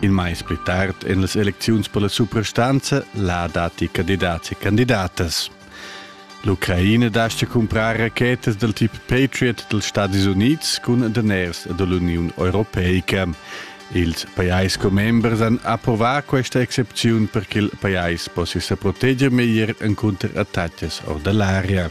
Il mais pli tard en las elecziuns per la suprastanza la datti candidats e candidatas. L'Ucraina dascha cumprar rachetas dal tip Patriot dals Stadis Unids cun daners da l'Uniun Europeica. Ils pajais commembers han approvà questa excepziun per ch'il pajais possia sa proteger meglier encunter attacas or da l'aria.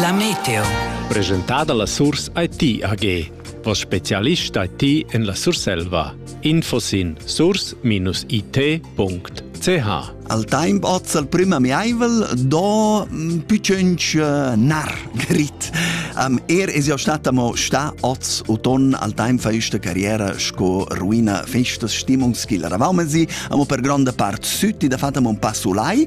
La Meteo. Presentada la Surs IT AG. Voss specialist IT en la Surselva. Info sin surs-it.ch Al temp oz al prim amiaivel do mm, più cenc eh, nar grit. Um, er es jau stata mo sta oz o ton al temp fa sta carriera sco ruina festas stimungs chi la ravaumen si, amo per gronda part sütti da fata un passo lai,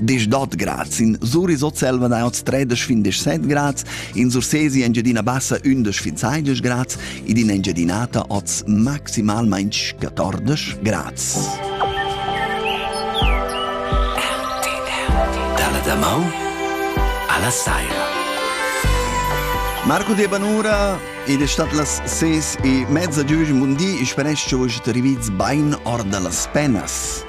disch dot grads. In surisot selva nauts 3 findisch 7 grads, in sursesi Engiadina Bassa 11 fin 16 grads, id in Engiadinata oz maximalmain 14 grads. Dalla da mau alla saira. Marco de Banura Ed è stata las ses e mezza giugi mundi, ich speresch che vos te riviz bein or dallas penas.